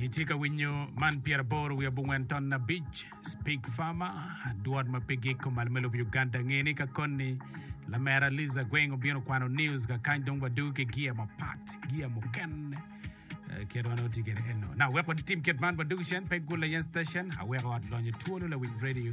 Itye ka winyo man pyera boro wiye bungwen ton na bic Speak Farmer dwot ma pe giko malo me lobo Uganda nge ni ka koni lamera Liza Gweng obino kwano news ka kany dong wadu ki gia mapat gia mukene eh, kit wan oti kede eno na wek wadi tim kit man wadu kicen pe gula yen station aweko ot lonyo twolo lawiny radio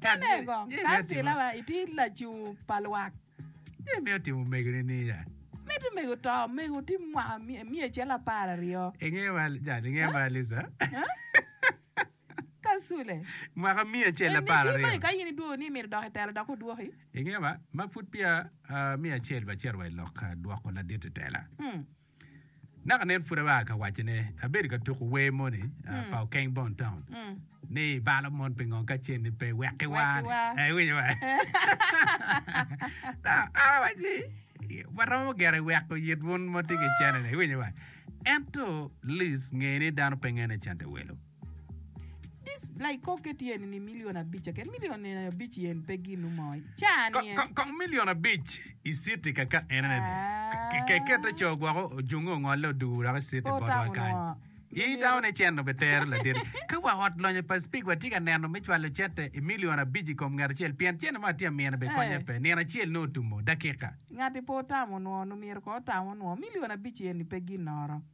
Ka me gong kancilawa iti lacungu pa lwak. Ni mito timo omegoni niya. Mit omego to omego ti mwaka myec cel apar aryo. Inge wa jal inge wa Lisa. Ka sule. Mwaka myec cel apar aryo. Eni di ka in idwogo ni mito dok itela dok odwoki. Inge wa ma pud pia myec acel ba cito wa ilok dwoko ladit itela. Naka nen pud abaa ka wacone, abedo ka tuku wer moni ah, pa Okeng Bon Town. Ni ibalo mon pingo ka cen ni pe wekki Wekki war. war. Eh, iwinyo wa. Na, an awac ni, waromo gire weko yit wun ma tye ki cene-ni, iwinyo wa. Ento Liz ngeye ni dano pe ngene cente welo. Laikokke tye eni ni milion abic keken, milion nino abic yen pe ginu mo i caa ni en. Kong, kong milion abic i city kaka en ene ni. Ke- ke- Kete co gwoko ojunge ongolle odugu wek i city Po botwa tamo kany. nwa. I Lumira. taun e cen obe tero laderi. Ka wa ot lonyo pa speak wa tye ka neno me cwalo cete i milion abic i kom ngat acel pien cene mo atye amine be konye Eh. pe. Nino acel nongo otumo, dakika. Ngati pe otamo nwo, lumira ko otamo nwo, milion abic yen ni pe ginnoro.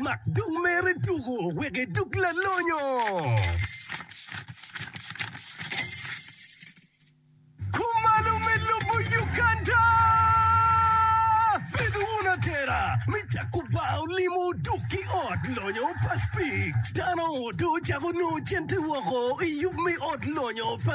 Mak dog mere tuko wek edog lalonyo. Kumalo me lobo Uganda! Bedo wun atera me cako bar olimo duk ki ot lonyo pa Spik. Dano odo cako nongo cente woko i yub me ot lonyo pa